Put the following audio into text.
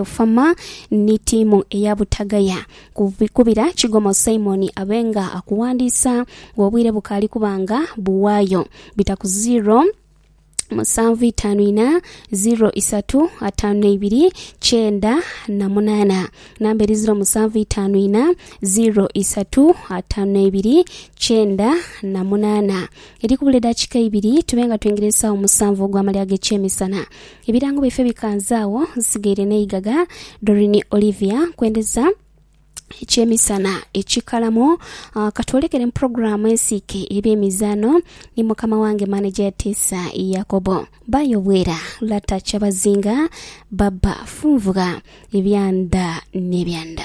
Ofama ni tiimu eya Butagaya kubira Kigomo Simon abe nga akuwandiisa nga obwire bukaali kuba nga buwaayo bita ku ziro musanvu itaanu ina, ziro isatu ataanu na ibiri kyenda na munaana. Namba eri ziro musanvu itaanu ina, ziro isatu ataanu na ibiri kyenda na munaana. Eri kubula eddakiika ibiri tube nga twingira esaawa musanvu ogw'amalya ag'ekyemisana. Ebirango byaife bikanze agho, nsigaire n'eighagha. Doreen Olivia, Nkwendeza ekyemisana ekikalamo. Katwolekere mu pulogulaamu ensiike ey'ebyemizaano ni mukama wange maneja Yatiisa Yakobo. Bba Yobwera, Lata Kyabazinga, Baba Funvugha, Ebyanda n'ebyanda.